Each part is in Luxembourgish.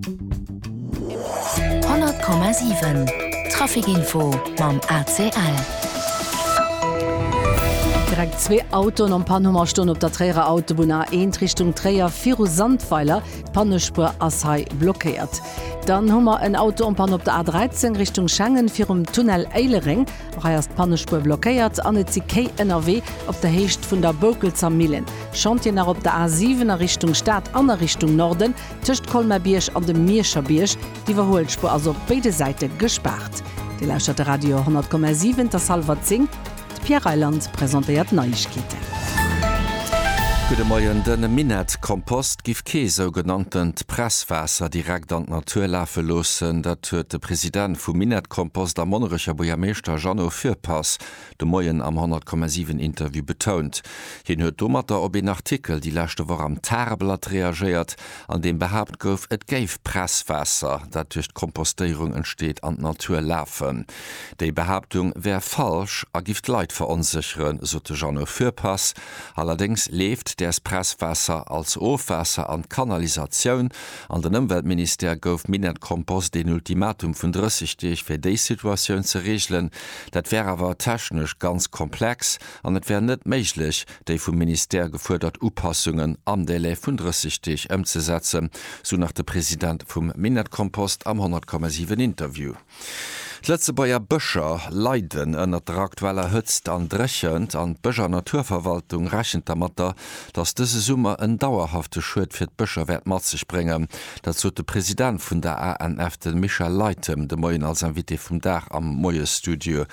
100,7 Traficinfo mam ACL. Direkt zwee Autoen am Panhummer stoen op der Tréierer Autobunn A1 Richtung Tréier viru Sandweiler. D'Pannespuer ass hei blockéiert. Dann hu mer en Auto en Panne op der A13 Richtung Schengen virum Tunnel Éilereng. Och hei ass d'Pannespuer blockéiert an et si Kéi ënnerwee op der Héicht vun der Boukelzer Millen. Chantier nach op der A7 a Richtung Stad an a Richtung Norden. Tëscht Colmer-Bierg an dem Mierscher Bierg, d'Iwwerhuelspuer ass op béide Säite gespaart. Dir lauschtert de Radio 10,7, et ass hallwer 10, d'Pierre Reyland presentéiert d'Neiegkeeten. Gudde Moien, De Minett Kompost giff kee sougenanntent Presswaasser direkt an d'Natur lafe loossen. Dat huet de President vum Minett Kompost a Monnerecher Buergermeeschter Jeannot Fürpass de Moien am 100,7 Interview betount. Hien huet domatter op een Artikel déi leschte Woch am Tageblatt reagéiert, an deem behaapt gouf, et géif Presswaasser, dat duerch d'Kompostéierung entsteet, an d'Natur lafen. Déi Behaaptung wär falsch a giff d'Leit veronsécheren, sot de Jeannot Fürpass. Allerdéngs leeft däers Presswaasser als Ofwaasser an d'Kanalisatioun. An den Ëmweltministère gouf Minett Compost een Ultimatum vun 30 Deeg, fir déi Situatioun ze reegelen. Dat wär awer technesch ganz komplex an et wär net méiglech, déi vum Ministère gefuerdert Upassungen am Délai vun 30 Deeg ëmzesetzen, sou nach de President vum Minett-Kompost am 100,7 Interview. D'Lëtzebuerger Bëscher leiden ënnert der aktueller Hëtzt an Dréchent an d'Bësch an Naturverwaltung rechent dermatter, datt dëse Summer en dauerhafte Schued fir d'Bëscher wäert mat sech bréngen. Dat sot de President vun der ANF, de Michel Leytem, de Moien als Invité vum Dag am Moiesstudio.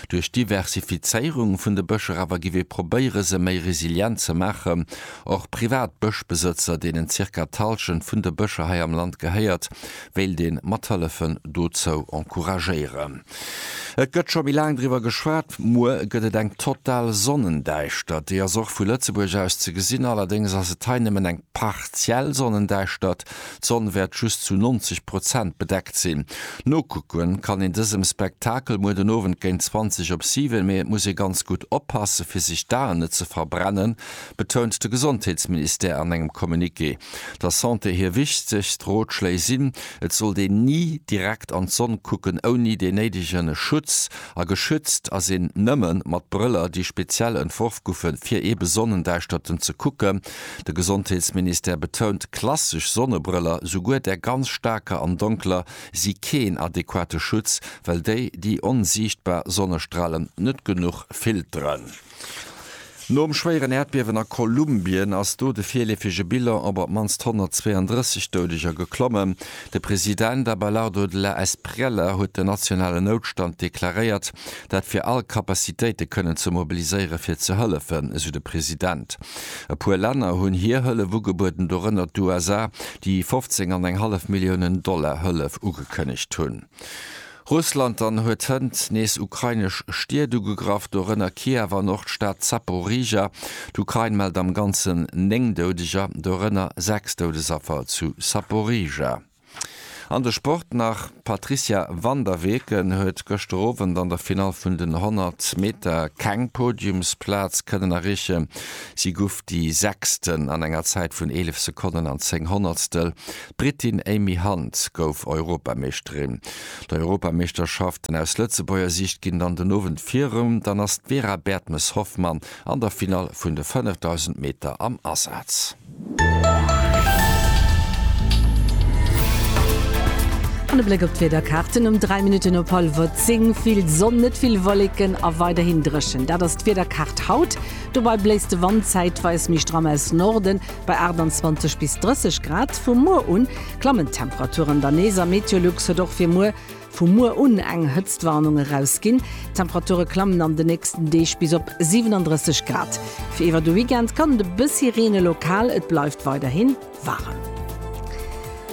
Duerch d'Diversifizéierung vun de Bëscher awer giff ee probéiere se méi resilient ze maachen. Och privat Bëschbesëtzer, deenen zirka d'Hallschent vun de Bëscher hei am Land gehéiert, wéilt een mathëllefen dozou encouragéieren. Et gëtt scho méi laang driwwer geschwat, muer gëtt et eng total Sonnendäischtert. Déi ass och vu Lëtzebuerg aus ze gesinn, allerdéngs ass et hei nëmmen eng partiell Sonnendäischtert, d'Sonn wäert just zu 90 Prozent bedeckt sinn. Nokucke kann een dësem Spektakel muer den Owend géint 20 op 7, mee et muss ee ganz gutt oppasse fir sech d'Aen net ze verbrennen, betount de Gesondheetsministère an engem Communiqué. der Santé hir wichtegst Rotschléi sinn, Et sollt een ni direkt an d'Sonn kucken ouni dee néidege Schutz, a geschützt ass een nëmme mat Brëller, déi speziell entworf goufen, fir eebe Sonnendäischterte ze kucken. De Gesondheetsministère betount, Klassesch Sonnebrëller, souguer där ganz staarker an donkeler, si keen adequate Schutz, well déi déi onsiichtbar Sonnestralen net genuch filteren. Nom schwéieren Äerdbiewen a Kolumbien ass do de virleefege Bilan op op d'mannst 132 Doudeger geklommen. De President Abelardo de la Espriella huet den nationalen Noutstand deklaréiert, dat fir all Capacitéite kënnen ze mobiliséiere fir ze hëllefen, esou de President. E puer Länner hunn hir Hëllef ugebueden, dorënner d'USA, déi 15 an eng hallef Milliounen Dollar Hëllef ugekënnegt hunn. Russland dann huet hënt nees ukrainesch Stied ugegraff, dorënner Kiew an och d'Stad Zaporizhia. D'Ukrain mellt am Ganzen 9 Doudeger, dorënner 6 Doudesaffer zu Zaporizhia. An de Sport nach, D'Patrizia van der Weken huet gëschter Owend an der Finall vun den 100 Meter keng Podiumsplaz kënnen erreechen. Si guff déi Sechsten an enger Zäit vun 11 Sekonnen an 10 Honnertstel. D'Britin Amy Hunt gouf Europameeschterin. D'Europameeschterschaften aus Lëtzebuerger Siicht ginn dann den Owend virum. Dann ass d'Vera Bertmes-Hoffmann an der Finall vun de 5000 Meter am Asaz. An e Bléck op d'Wiederkaarten, Um 3 Minutten op hallwer 10 vill Sonn, net vill Wolleken a weiderhin dréchen. Dat ass d'Wiederkaart haut. Dobei bléist de Wand zäitweis méi stramm aus Norden. Bei 28 bis 30 Grad vu muer un klammen d'Temperaturen dann nees a Meteolux huet och fir muer vu muer un eng Hëtztwarnung erausginn. D'Temperature klammen an de nächsten Deeg bis op 37 Grad. Fir iwwer de Weekend kann et e bëssi reene lokal, et bleift weiderhi waarem.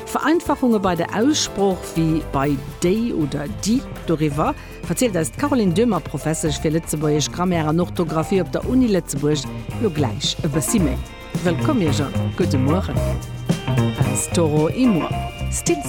Vereinfachunge bei der Aussprooch, wéi bei déi oder di, doriwwer. verzielt eis d'Caroline Döhmer, Professesch fir Lëtzebuergesch Grammaire an Orthografie op der Uni Lëtzebuerg, lo gläich e bëssi méi. Wëllkomm Iech a gudde Mueren aus Toro Imur. Stills.